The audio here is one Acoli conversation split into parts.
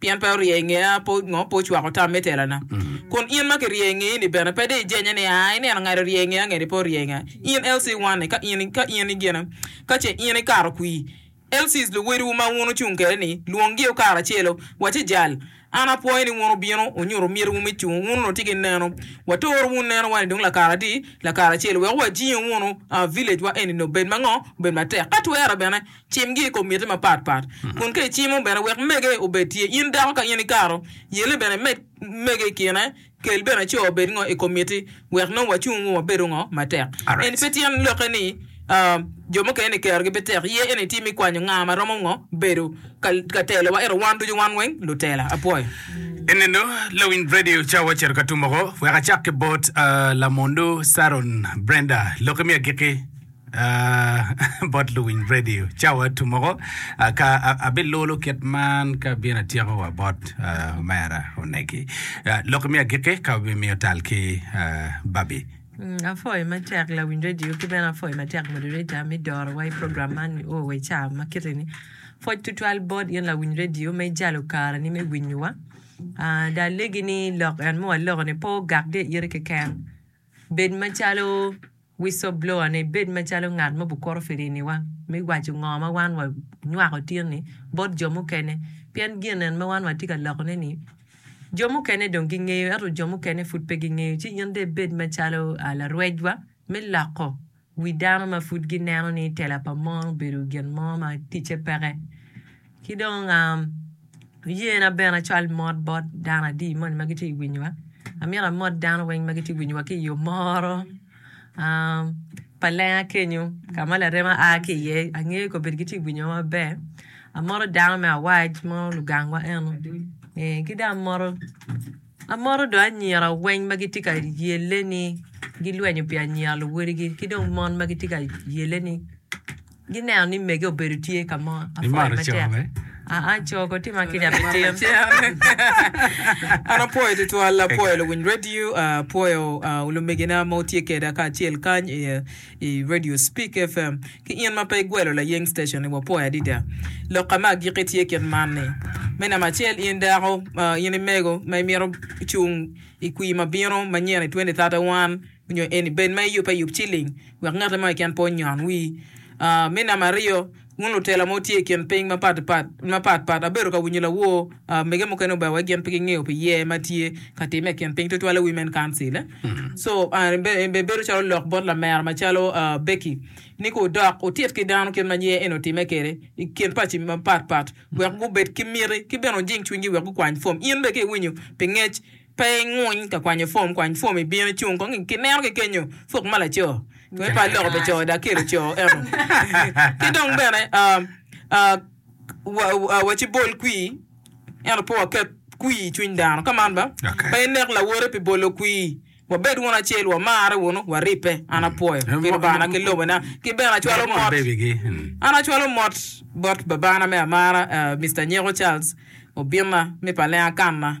Pien pe orye i ngeya, pe ongo pe ocwako tam me telana. Kun in ma kirye i ngeyi-ni bene, pe de ijenye ni, 'Aa, ineno ngat orye i ngeya ngeni pe orye i ngeya? In LC1-ni, ka in, ka in i gina, ka ce in ikato kwir, LCs luwotwu ma wun wucung kwede-ni, lwonggi o karacelo, waci jal, An apwoyo ni wun wubino wunyuto mitiwu me cung, wun onongo tye ki neno. Watoro wun neno wa-ni dong lakara adi? Lakara acel, wek wajingo wunu, aa, village wa eni-ni obed mango? Obed matek, ka twere bene, Cimgi i kom miti mapat pat, kun ka icimo bene wek mege obed tye in dako ka in ikato yelli bene imed mege i kine, kel bene co obed ngo i kom miti wek nongo wacung wa wabedo ngo matek. Eni pe tyen lokke ni jo mukene ni kerogi pe tek, iye eni tye me kwanyo nga ma romo ngo bedo ka telowa, ento wan ducu wan weng lutela. Apwoyo. Eninu lawiny Brady Ocawa ocito ka tum oko. Wek acak ki bot Lamondu Saron Brenda, lokke me agikki. Bot luwiny radio cawa tumoko ka abilulu kit man ka abino atyeko wa bot omera oneki. Lok imi agiki ka wabimiyo tal ki babi. Apwoyo matek lawiny radio ki bene apwoyo matek moderator me dorowa i program man ni oo i ca ma kiti ni. Pwoc tutwal bot in lawiny radio me jalo kare ni me winyowa. Dong alegi ni lok en ma waloko ni pe ogak gi i ite keken. Bed macalo Whistleblower-ni bed macalo ngat ma obukuro firiniwa me waco ngo ma wan wanywako tin-ni bot jo mukene, pien gin en ma wan watye ka lokone-ni jo mukene dong gingeyo, ento jo mukene pud pe gingeyo. Ci in dong ibed macalo larwecwa me loko wi dano ma pud gineno ni tela pa mon obedo gin mo ma ticce peke. Ki dong yena bene acwal mot bot dano adi moni ma gitye ka winyowa. Amyero amot dano weng ma gitye ka winyowa ki i yo moro pa lenga kenyo ka ma larema a ki iye. Angeyo kobedi gitye ka winyowa maber. Amoto dano me awac mo lugangwa eno ee ki dong amoto amoto dong anyira weng ma gitye ka yelle ni gilwenyo pi anyira luwadigi ki dong mon ma gitye ka yelle ni. Gineno ni mege obedo tye ka mo. Imato cogo be? Aa, cogo tye ma kica pe tim. An apwoyo tutwal, apwoyo luwiny radio, apwoyo lumegina ma wutye keda kacel kany i radio Speak FM. Ki in ma pe igwelo layeng station ni wapwoyo adida. Lokka me agikki tye kit man ni, me namba acel in dako, in imego ma imito cung i kwii ma bino manyen i twenty thirty one, nyo eni bed ma eyub ayub ci ling wek ngati mo keken pe onyon wi. Me namba aryo, wun lutela ma wutye i kin piny mapat pat, abedo ka winyo lawor mege mukene ober wek gin pe gingeyo pi yer ma tye ka timme i kin piny tutwal i Women Council. So, bedo calo lok bot lamera macalo Becky ni ka wudok wutit ki dano kit ma yer eni otimme kwede i kin paci mapat pat wek gubed ki miti ki bene wujing cwinygi wek gukwany pwom. In bene ka iwinyo pi ngec, Pe inguny ka kwanyo fom, kwany fom i bino cung kong ki neno ki kenyo puk ma laco keme pa loko pi co dok kelo co eno ki dong bene waci bol kwi ento pe waket kwi i cwiny dano ka man ba pe inek lawote pi bolo kwi wabed wunu acel wamare wunu waribbe an apwoyo Lubanga ki lobo na ki bene acwalo mot an acwalo mot bot babana me amara Mister Nyeko Charles obinna me pa lenga kanna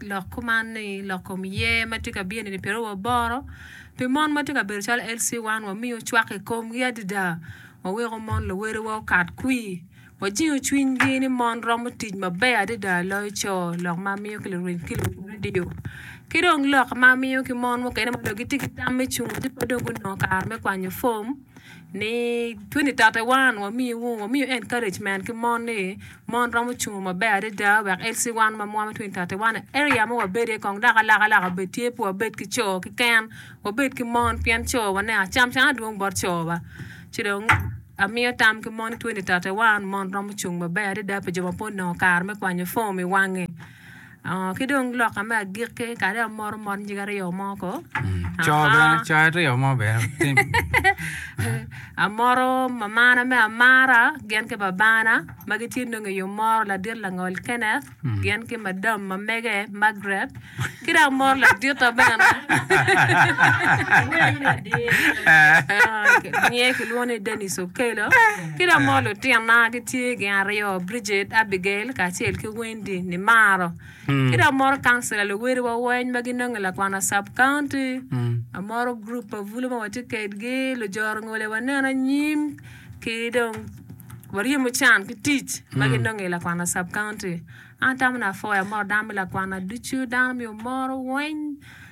Lok kuman ni lok kom yer ma tye ka bino-ni pe oromo boro. Pi mon ma tye ka bedo calo LC1, wamiyo cwak i komgi adada, waweko mon luwedewa okat kwir, wajingo cwinygi ni mon romo tic maber adada loyo co. Lok ma amiyo ki lurem ki luredio. Ki dong lok ma amiyo ki mon mukene ma onongo gitye ki tam me cungo ci pe dong gunongo kare me kwanyo pom. ni 2031 wamiyo wamiyo encouragement ki mon ni mon romo cungo maber adada wek LC wan ma mwaki 2031 area ma wabede kong dok alaka laka obed tye pe wabed ki co kiken wabed ki mon pien co wa ne acam cam adwong bot co wa ci dong amiyo tam ki mon ni 2031 mon romo cung maber adada pi jo ma pe onongo kare me kwanyo form iwange. Ki dong loka me agikki kadi amoto mot nyig aryo mo ko. Coo bene, coo aryo mo bene. Tim. Amoto mamana me amara gin ki babana ma gitye dong i omoro ladit langol Kenneth gin ki madam ma mege Margaret ki dong amoto laditta bene. Nge kilwongo ni Dennis Okello. Ki dong amoto lutinna gitye gin aryo Bridget, Abigail kacel ki Win. Cindy Nimaro. Ki dong amoro councilor luwil wa weny ma ginongo i Lakwana sub county. Amoro group pa bulu ma watye kedgi, lujoro ngole waneno anyim ki dong waryemo can ki tic ma ginongo i Lakwana sub county. An atamo ni afoyo amoro dano me Lakwana ducu, dano omyero omoro weny.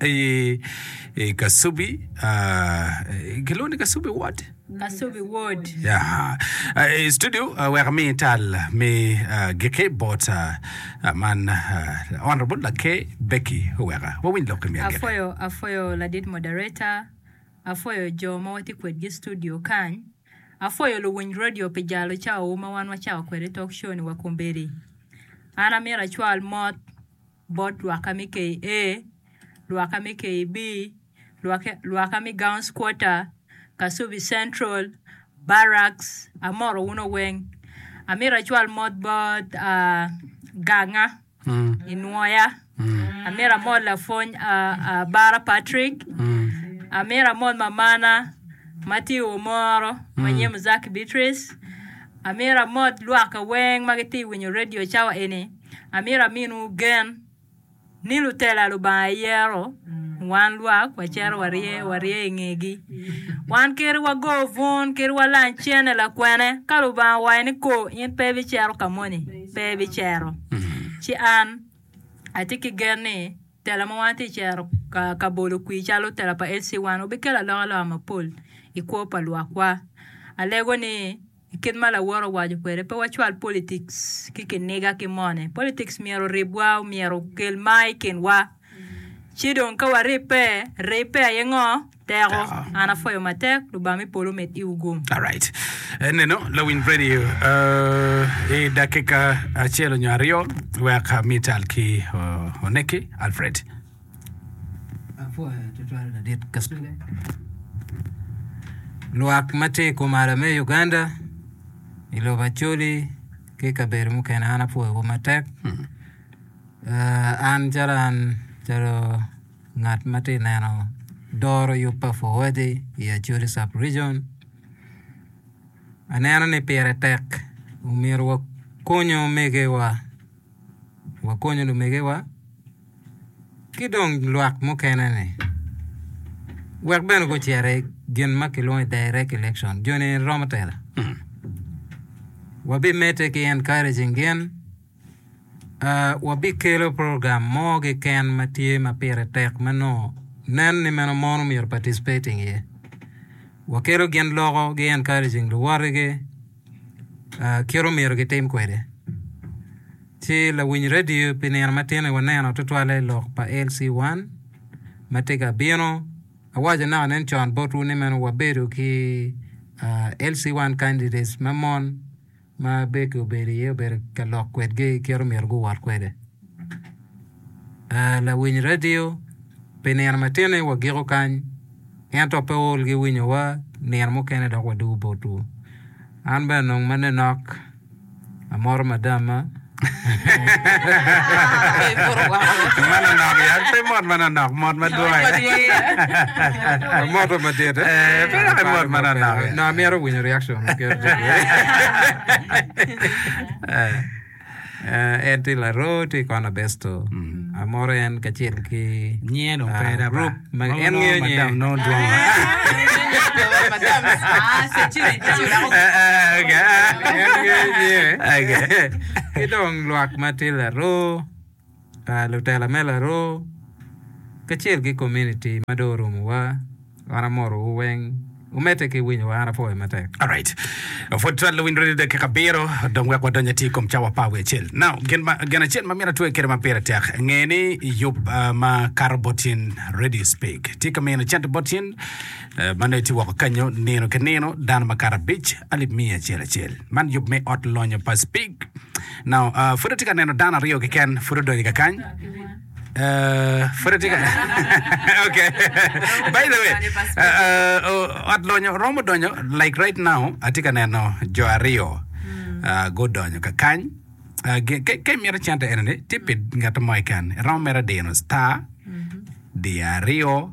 I Kasubi, kilwongo ni Kasubi Ward? Kasubi Ward. Ya. I studio wek ami tal me giki bot man Honorable Lake Becky Oweka. Wawiny lok kemi agene. Apwoyo apwoyo ladit moderator, apwoyo jo ma watye kwedgi i studio kany, apwoyo luwiny redio pi jalo cawawu ma wan wacako kwede talk show ni wa kombeddi. An amyero acwal mot. bot lwakka me KA, lwakka me KB, lwakka me Gowns Quarter, Kasubi Central, Barracks, amoto wuno weng. Amito acwal mot bot Ganga i Nwoya, amito amot lapwony Abara Patrick, amito amot mamana ma tye i Womoro ma nyinge Muzaki Beatrice, amito amot lwakka weng ma gitye ka winyo redio cawa eni. Amito aminwu gen ni lutela Lubanga eyero, wan lwak wacito warye warye i ngegi. Wan kiri wago bun, kiri walang cene lakwene. Ka Lubanga owaco ni ko, in pe ibicito ka moni, pe ibicito. Ci an atye ki gen ni tela ma wan atye ka cero ka ka bolo kwir calo tela pa LC1 wubikelo alokaloka mapol i kwo pa lwakwa. Alego ni I kit ma lawot owaco kwede, pe wacwal politics ki kiniga ki mone. Politics myero oribwa, myero okel mar i kinwa. Ci dong ka waribbe, ribbe aye ngo? Teko. Teko. An apwoyo matek. Lubanga me polo omed iwu gum. Alright. Eneno lawiny radio uh, i dakika acel nyo aryo wek uh, mital ki uh, oneki Alfred. Lwak ma tye i komala me Uganda i lobo Acholi ki i kabedo mukene an apwoyogi matek. An calo an calo ngat ma tye ka neno doro yub pa puoyogi i Acholi sub region aneno ni pire tek myero wakonyo omegiwa wakonyo lumegiwa. ki dong lwak mukene ni wek bene gucito i gin ma kilwongo ni direct election joni romo tela wabimedde ki encouraging gin uh, wabikelo program mo keken ma tye ma pire tek ma nongo nen ni meno mon omyero participating iye wakelo gin loko gi encouraging luwotigi kit omyero gitim kwede. Ci lawiny redio pi nino matini waneno tutwalle i lok pa LC1 ma tye ka bino. Awaco naka nen con botwu ni meno wabedo ki ah, LC1 candidates ma mon ma Becky obedo iye obedo ka lok kwedgi kit omyero guwot kwede. Ah, lawiny radio pi nino matino-ni wagiko kany, ento pe ool ki winyowa nino mukene dok wadugo botwu. An bene nong ma ninok, amoto madamma. Ma nanok ya, pe mot ma nanok, mot madwong. Amoto madit. Eh, pe dok imot ma nanok. No, amyero winyo reaction. Eh. En tye laroo, tye kona besto. Amoro en kacel ki Nyen ah, opera ba. group ma Nongo en nongo ngeyo nye. madam nongo dwong. Okay. Ki dong lwak ma tye laroo. lutela me laroo kacel ki komuniti ma dong orumowa wan amotowu weng wumedde ki winyowa an apwoyo matek. Alright. Pwod twal luwiny rwodi dakika abiro dong wek wadony ati i kom cawa pa wiye acel. Now, gin, ma, gin acel ma myero atwe kwede ma pire tek, nge ni yub uh, ma kato bot cen, radio speak, tye ka mino cente bot cen, uh, ma nongo itye woko kanyo nino ki nino, dano ma kato abic, alip miya acel acel. Man yub me ot lonyo pa speak. Nao, Uh, pud atye ka neno dano aryo keken pud odonyo ka kany. Uh, pud atye ka. ok. By the way, uh, uh, oh, ot lonyo romo donyo, like right now, atye ka neno jo aryo uh, gudonyo ka kany. Uh, ge- ke, ke mito cente ene ni, tye pi ngat mo keken. Iromo mere dino star, di aryo,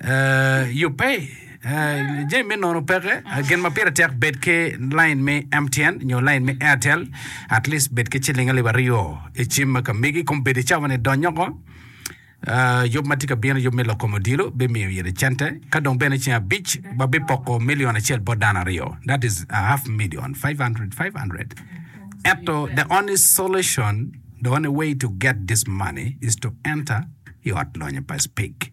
Yubbe, Jami me nono peke. Gin ma pire tek bed ki lain me MTN nyo lain me Airtel at least bed ki ciling alip aryo i cim ma ka megi kong bed i cawa ni donnyo oko. Yub ma tye ka bino, yub me lok kom odilo bimiyo ite cente. Ka dong bene ceng abic wabipoko milion acel bot dano aryo. That is a half million, five hundred, five hundred. Ento the only solution, the only way to get this money is to enter i ot lonyo pa SPIC.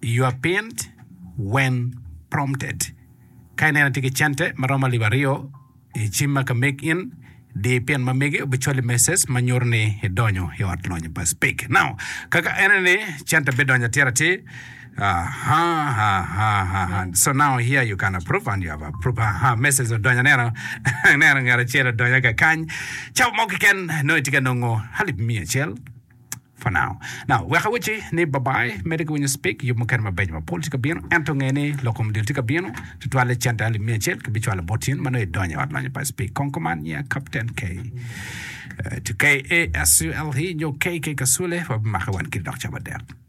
You are pinned when prompted. Ka ineno itye ki cente ma romo alip aryo i cim ma ka meg in, di pin ma megi obicwali message ma nyuto ni idonyo i ot lonyo pa Speak Now. Ka ka ene ni cente bidonyo atir atir, aha, aha, aha, aha. So now here you can approve and you have approved. Aha, message odonyo aneno. Aneno ngat acel odonyo kakany. Cawa mo keken nongo itye ka nongo alip miya acel for now. Now, wek awacci ni babai, mede ki winyo speak, yub mukene mabeco mapol tye ka bino, ento nge ni lok kom dil tye ka bino, tutwalle cente alip miya acel ki bicwalo bot in ma nongo idonyo i ot lonyo pa speak. Kong kuman nyia Captain K. Eh, to KASULE nyo KK Kasule, wabimake wan kidi dok cawa dek.